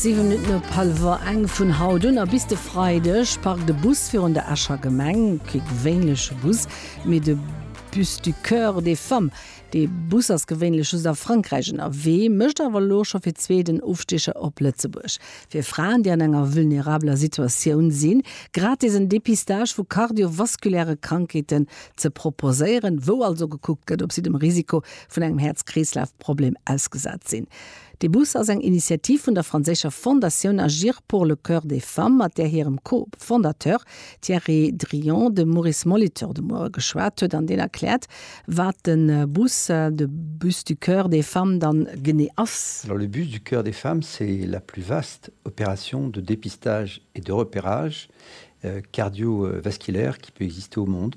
Siwe Minutten op hallwer eng vun haut un a bis de Freideg parkt e Bus virun der Escher Gemeng. Kee gewéinleche Bus, mee de Bus du Coeur des Femmes. De Bus ass gewéinlech just a Frankräich ënnerwee, mécht awer elo scho fir zwee den Ofstiecher op Lëtzebuerg. Fir Fraen, déi an enger vulnerabeler Situatioun sinn, gratis en Depistage vu kardiovaskuläre Krankheeten ze proposéieren, wou also gekuckt gëtt, ob si dem Risiko vun engem Häerz-Kreeslaf. Problem ausgesat sinn. De Bus ass eng Initiativ vun der franséischer Fondatioun Agir pour le cœur des femmes, mat där hirem Co-Fondateur Thierry Drillon de Maurice Molitor de Muere geschwat huet an deen erkläert, wat de Bus, de Bus du cœur des femmes da genee ass. Alors, le Bus du cœur des femmes, c'est la plus vaste opération de dépistage et de repérage cardiovasculaire qui peut exister au monde.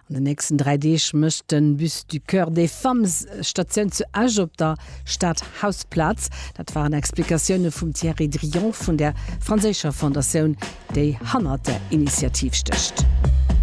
An den nächsten 3 Deeg mécht de Bus du Coeur des Femmes Statioun zu Esch op der Stadhausplaz. Dat waren Explikatioune vum Thierry Drillon vun der franséischer Fondatioun, déi hannert der Initiativ stécht.